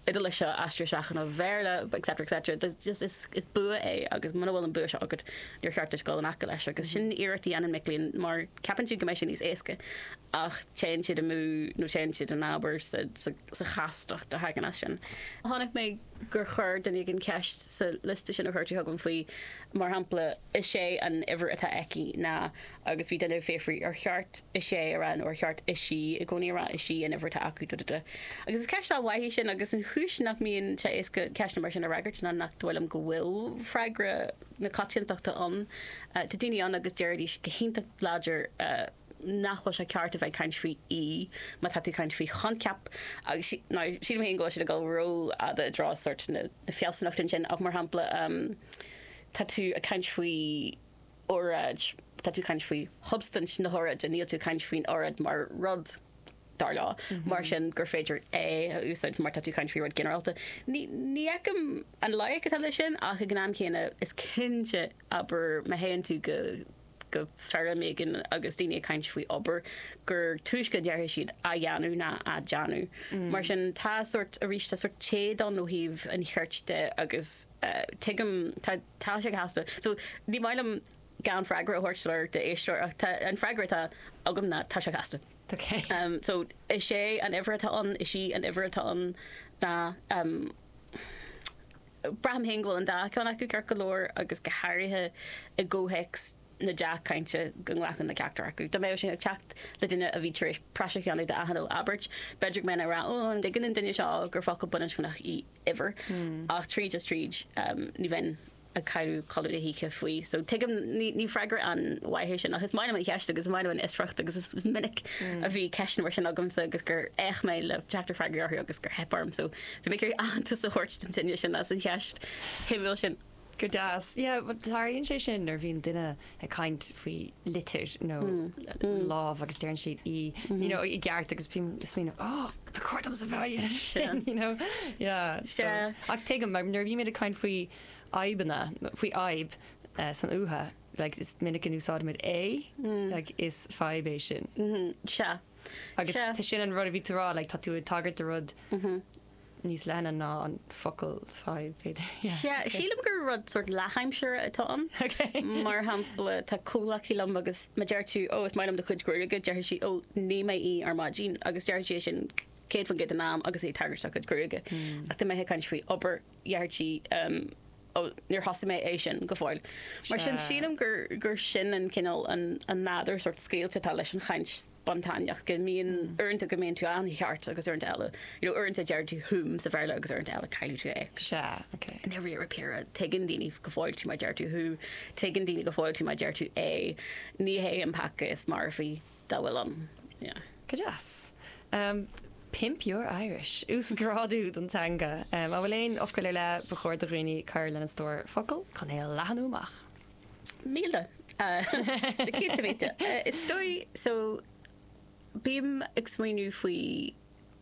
Iodáilise seo, aistriú isteach i mBéarla, etc. etc. There's just, is, is bua é agus muna bhfuil an bua seo agat, níor cheart duit dul in aice leis agus sin iarracht a dhéanann mic léinn mar ceapann siad go mbeidh sé níos éasca ach téann siad amú nó téann siad in abar sa, sa, sa chastacht a thagann as sin. Chonaic mé gur chuir duine éigin ceist sa liosta sin a chuir tú chugam faoi, mar shampla, is é an uimhir atá aici ná agus bhí duine ag fiafraí, ar cheart 'is ea' a rá nó ar cheart 'is í' i gcónaí a rá, 'is í an uimhir atá acu. duh duh duh. Agus is ceist an-mhaith í sin, agus an chúis nach mbíonn sé éasca ceisteanna mar sin a fhreagairt ná nach dóigh liom go bhfuil freagra na coitiantachta ann. Tá daoine ann agus déarfaidís go hiontach láidir nach bhfuil sé ceart a bheith ag caint faoi 'í' má tá tú ag caint faoi choincheap, agus now sílim féin go bhfuil siad ag dul ró-fhada i dtreo sórt na fealsúnachta ansin, ach mar shampla tá tú ag caint faoi. oráid. Tá tú ag caint faoi shubstaint na hóráide, níl tú ag caint faoin óráid mar rud, dar leo. Mar sin gur féidir é a úsáid mar tá tú ag caint faoi rud ginearálta. Ní fheicim an loighic atá leis sin ach ag an am céanna is cinnte, abair má théann tú go feirm éigin agus daoine ag caint faoi obair, gur túisce a déarfaidh siad á dhéanamh ná á déanamh. Mar sin tá sórt, arís, tá sórt téad ann ó thaobh an chirt de agus tuigim, tá, Tá sé casta. So, ní maith liom gan freagra a thabhairt soiléir d'éisteoir ach tá, an freagra atá agam ná tá sé casta. Ok. So, is é an uimhir atá ann, is í an uimhir atá ann ná, ehm, braithim féin go bhfuil an dá ceann acu ceart go leor agus go háirithe i gcomhthéacs na deá-chainte go nglacfainn le ceachtar acu. Dá mbeadh sé ag teacht ó dhuine a bhí tar éis praiseach a dhéanamh d'alt nó abairt, b'fhéidir go mbeinn ag rá, Ó, an dtuigeann an duine seo gur focal baininscneach í uimhir? Ach tríd is tríd, ní bheinn ag cailliúint codladh na hoíche faoi. So tuigim, ní freagra an-mhaith é sin ach is maith liom an cheist agus is maith liom an fhiosracht agus is minic a bhí ceisteanna mar sin agamsa agus gur fhéach mé le teacht ar fhreagraí orthu agus gur theip orm. So ba mhaith liom aitheantas a thabhairt den duine sin as an cheist shuimiúil sin. Go deas. Yeah, well tarlaíonn sé sin nuair a bhíonn duine ag caint faoi litir nó lámh agus deireann siad í you know i gceart agus bím ag smaoineamh oh ba chóir domsa bheith á dhéanamh sin you know yeah so Sea. ach tuigim mar nuair a bhímid ag caint faoi fhadhbanna faoi fhadhb eh, san uatha like is minic a úsáidimid é like is fadhb é sin Sea. agus Sea. sin an rud a bhí tú a rá like tá tú ag tagairt do rud níos leithne ná an focal fadhb, b'fhéidir. Sea, sílim gur rud sórt leath-instinne atá ann. Ok. Mar shampla, tá comhghleacaí liom agus má deir tú, Ó, is maith liom do chuid gruaige, déarfaidh sí, Ó, nigh mé í ar maidin. Agus deir sí é sin céad faoin gcéad den am agus í ag tagairt dá cuid gruaige. Ach dá mbeadh sí ag caint faoi obair, déarfadh sí, Ó, níor thosaigh mé é sin go fóill. Mar sin, sílim gur sin an cineál, an nádúr sórt scaoilte atá leis an chaint. bun tábhachtach go mbíonn uaireanta go mbíonn tú an-aireach agus uaireanta eile, you know, uaireanta deir tú whom sa Bhéarla agus uaireanta eile cailleann tú é. Sea, ok. I ndáiríre, tuigeann daoine go fóill tú má deir tú Who, tuigeann daoine go fóill tú má deir tú A. Ní hé an peaca is marfaí dá bhfuil ann. Yeah. Go deas. Pimp your Irish. Uasghrádú don teanga. An bhfuil aon fhocal ar leith, ba chóir do dhaoine cur lena stór focal chun é a leathnú amach. Tá na céadta míle. Is dóigh so bím ag smaoineamh faoi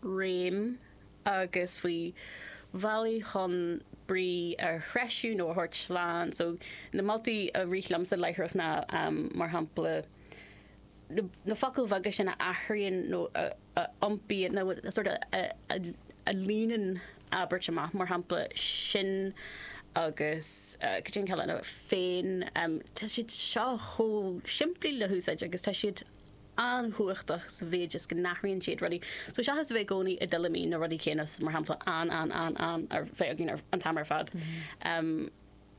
réim agus faoi bhealaí chun brí a threisiú nó a thabhairt slán. So na moltaí a rith liomsa láithreach ná, mar shampla, na focail bheaga sin a athraíonn nó a iompaíonn nó a sort of a líonann abairt amach, mar shampla, sin agus go deo an ceann eile, féin. Tá siad seo chomh simplí le húsáid agus tá siad an-chumhachtach sa mhéid is go n-athraíonn siad rudaí. So seachas a bheith i gcónaí i dtuilleamaí na rudaí céanna, mar shampla, an, an, an, an, an, a bheith againn an t-am ar fad,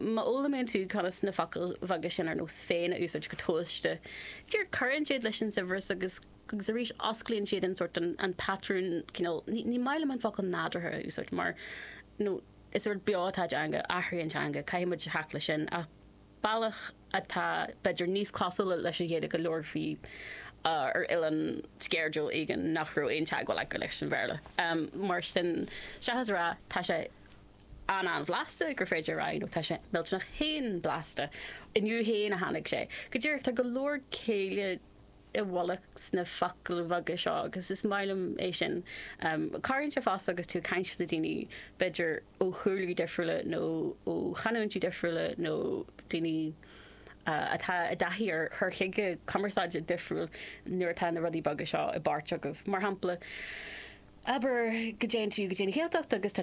Má fhoghlaimíonn tú conas na focail bheaga sin ar nós 'féin' a úsáid go tomhaiste, déarfainn, cuireann siad leis an saibhreas agus agus arís osclaíonn siad an sort, an patrún cineál, ní ní maith liom an focal 'nádúrtha' a úsáid mar ar ndóigh is rud beo atá i dteanga, athraíonn teanga, caithfidh muid glacadh leis sin ach bealach atá b'fhéidir níos cosúla leis an Ghaeilge a labharfaí ar oileán sceirdiúil éigin nach raibh aon teagmháil acu leis an Bhéarla. Mar sin, seachas a rá 'tá sé an-an-bhlasta, gur féidir a rá, you know, tá sé millteanach fhéin blasta. Inniu fhéin a tháinig sé. Go díreach, tá go leor céille i bhfolach sna focail bheaga seo agus is maith liom é sin. Cabhraíonn sé fosta agus tú ag caint le daoine, b'fhéidir ó chúlraí difriúla nó ó chanúintí difriúla nó daoine atá i dtaithí ar chur chuige cumarsáide difriúil nuair atá na rudaí beaga seo i bpáirt agaibh. Mar shampla, abair go dtéann tú go dtí an Ghaeltacht agus tá